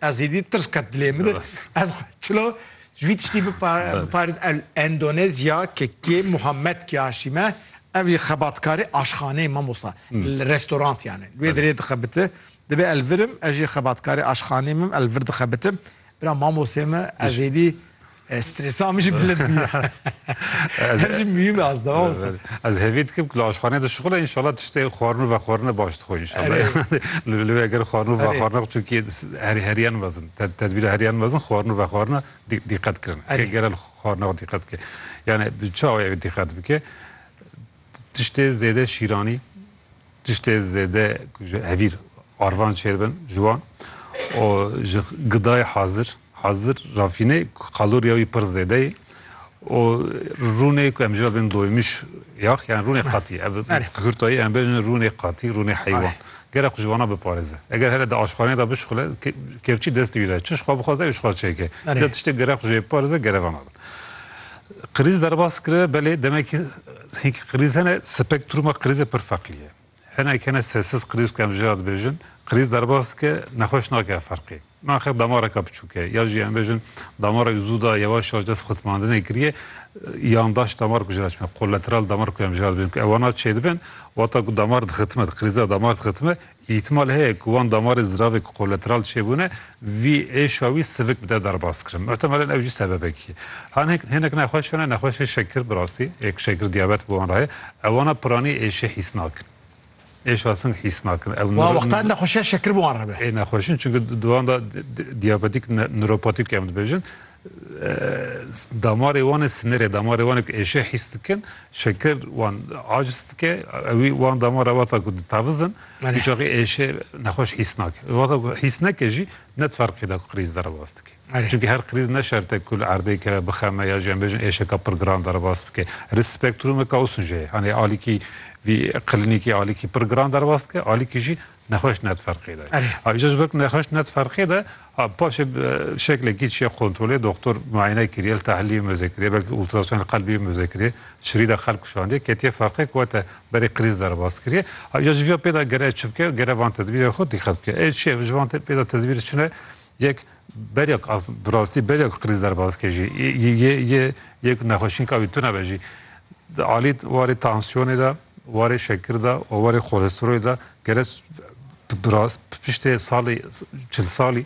Ez êdî tirs qet dilê min e. Ez xwe çilo ji vî tiştî biparêz el Endonezya ke kê Muhammed Kiyashîm e ev jî xebatkarê aşxaneyê mamosa li restorantiyan e. Li wê dirê dixebite dibe el virim ez jî xebatkarê aşxaneyê min el vir dixebitim. Bira mamosê me ez êdî Stresa min jî bilind bûye. Ez jî mühîme ez de wasa. Ez hevî dikim ku li aşxaneyê de şixule înşallah tiştê xwarin û vexwarine baş dixwe înşallah. Li wê eger xwarin û vexwarine çunkî herî heriyan mezin tedbîra heriyan mezin xwarin û vexwarine dîqet kirin. Eger li xwarina xwe dîqet bike yani bi çawa ew dîqet bike Tiştê zêde şîranî, tiştê zêde ku ji hevîr arvan çêr bin ji wan û ji gidayê hazir hazir rafînê kaloriya wî pir zêde ye û rûnê ku em jî bin doymiş yax yan rûnê qatî ev kurtayî em bin rûnê qatî rûnê heywan gerek ji wana biparêze eger hele di aşxaneyê de bişixile kevçî destê wî de çi xwe bixwaze ew xwe çêke tiştê gerek jê biparêze gerevana be. Krîz derbas kiriye belê demekî hinkî krîz hene spektruma krîzê pir feqlî ye. Hinek hene sessiz krîz ku em jê re dibêjin, krîz derbas dike nexweş nake ev ferqê. Naxir damareke biçûk e ya jî em bêjin damarek zû da yewaş yewaş dest xizmandinê kiriye yandaş damar ku jê re çime kolateral damar ku em jê re dibêjin ku ew wana çêdibin wata ku damar dixitime di krîz de damar dixitime Îhtimal heye ku wan damarên ziravê ku kolateral çêbûne vî êşa wî sivik bide derbas kirin. Muhtemelên ew jî sebebek ye. Hanhek hênek nexweş hene, nexweşê şekir bi rastî, ê ku şekir diyabet bi wan re heye, ew wana piranî êşê hîs nakin. Êşa sing hîs nakin. Ew Wa wextan nexweşiya şekir bi wan re be. Ê nexweşin çunku di wan de diyabetîk, nûropatîk em dibêjin, Damarê wan e sinirê, damarê wan e ku êşê hîs dikin, şekir wan aciz dike, ewî wan damar e wata ku ditaviz in, Belê. hiçaxê êşê nexweş hîs nake. Wata ku hîs neke jî ne di ferqê de ku krîz derebas dike. Belê. Çimkî her krîz ne şert e ku li erdêke bixeme ya jî em bêjin êşeka pir giran derebas bike. Risk spektrûmeke ûsun jê ye. Hanê alîkî vî klinîkî alîkî pir giran derebas dike, alîkî jî Nexweş net ferqê de. Aja ji ber ku nexweş net ferqê de paşê şeklekî çiye kontrolê doktor muayene kiriye li tahliliyê mizê kiriye belkî ultrason qelbiyê mizê kiriye şirî de xelk kişandiye ketiye ferqê ku te berê krîz derbas kiriye. Aja ji viya pê de gere çi bike gere van tedbîrê xwe dîqet bike. Ê çiye ji van pê de tedbîr çi ne yek Berek as bi rastî berek qirîz derbas ke jî yê yê yê ku nexweşîn ka wî tune be jî di alî warê tansiyonê de warê şekir de û warê xolesteroyê de gere bi rastî piştê salê çil salî